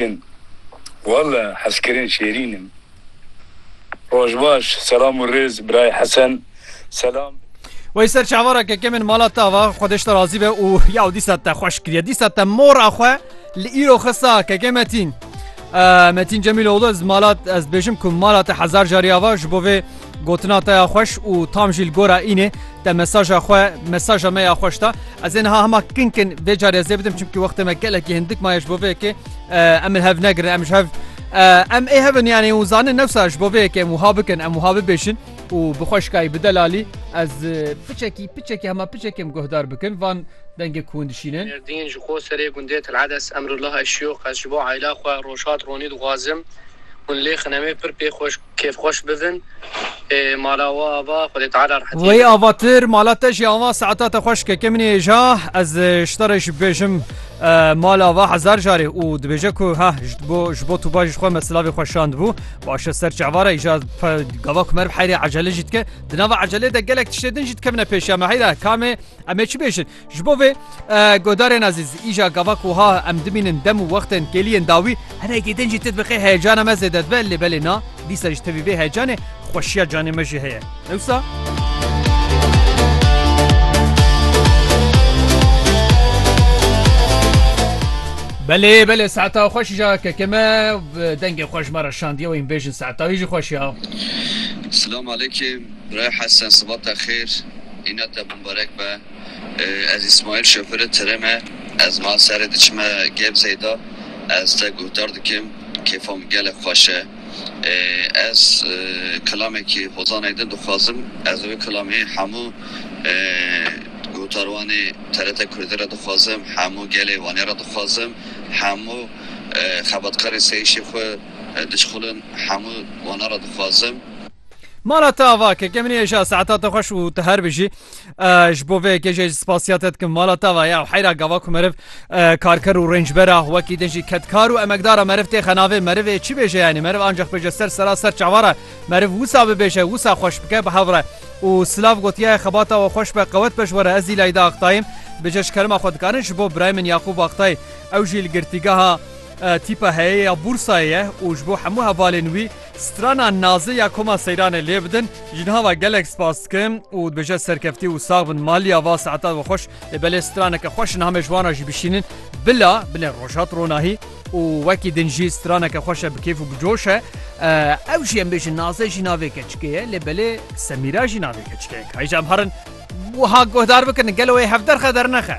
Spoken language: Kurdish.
Min walla hezkirin şêrîn in. Roj baş selam û rêz birayê Hesen selam. Wey ser çavara keke min mala te ava xwe deşte razî be û yaw dîsa te xweş kiriye dîsa te mora xwe li îro xista keke metîn. Metîn Cemîloğlu ez mala ez dibêjim ku mala te hezar carî ava ji bo vê Gotina te ya xweş û tam jî li gora înê te mesaja xwe mesaja me ya xweş da. Ez ê niha hema kin kin vê carê ez ê bidim çimkî wextê me gelekî hindik maye ji bo vê yekê em li hev negirin em ji hev em ê hevin yanê û zanin newsa ji bo vê yekê em wiha bikin em wiha bibêjin û bi xweşkayî bi delalî ez piçekî piçekî hema piçekî em guhdar bikin van dengê ku hûn dişînin. Mêrdîn ji xwe serê gundê Telades Emrullah Eşyûx Ez ji bo eyla xwe rojhat ronî dixwazim hûn lê xine me pir pê xweş Kêfxweş bibin ê mala we ava Xwedê Teala rehetiyê bide. Weyî avatir mala te jî ava saeta te xweş keke min êja ez ji te re jî bibêjim mala va hezar carê û dibêje ku ha jbo jbo tu bajî ji xwe me silavê xwe şandibû başe ser çava re îja gava ku merv heyrê ecele jî dike di nava ecelê de gelek tiştê din jî dikevine pêş ya me heyra kamê emê çi bêjin Ji bo vê guhdarên ezîz îja gava ku ha em dimînin dem û wextên kêliyên dawî hinekî din jî tu dibixê heyecana me zêde dibe lê belê na dîsa ji tevî vê heyecanê xweşiya canê me jî heye ewsa Belê belê saeta xweş ja keke me dengê xweş me re şandiye wê bêjin saeta wî jî xweş ya. Silam alekê. Bray Hesen sibata xêr îna te bimbarek be ez Îsmaîl şofêrê tirê me ez niha serê diçime Gebzeyê de ez te guhdar dikim kêfa min gelek xweş e ez kilamekî Hozanayê din dixwazim ez wê kilamê hemû guhdarwanê TRT Kurdî re dixwazim hemû gelê Wanê re dixwazim hemû xebatkarê seyîşê xwe diçxulin hemû wana re dixwazim. Mala te ava ke ke minê eja saeta te xweş û te her bijî ji bo vê yekê jê ji spasiya te dikim mala te va ya heyra gava ku meriv karker û rêncbera wekî din jî kedkar û emekdara meriv tê xenavê merivê çi bêje yanî meriv ancaq bêje ser sera ser çavara meriv wisa bibêje wisa xweş bike bi hevre û silav gotiye xebata we xweş be qewet be ji were ez îlay da aqtayim bêje ji kerima xwe dikarin ji bo birayê min Yaqûb Aqtay ew jî li girtîgeha tîpa heyeye ya bûrsayê ye û ji bo hemû hevalên wî Strana nazê ya Koma Seyranê lê bidin, jinhava gelek spas dikim û dibêje serkeftî û sax bin maliya va saeta we xweş ê belê straneke xweş niha me ji wan re jî bişînin bila binê rojhat ronahî û wekî din jî straneke xweş e bi kêf û bi coş e ew jî em bêjin nazê jî navê keçikê ye lê belê semîra jî navê keçikê ye ka hêj em herin wiha guhdar bikin gelo wê hevderxe dernexe.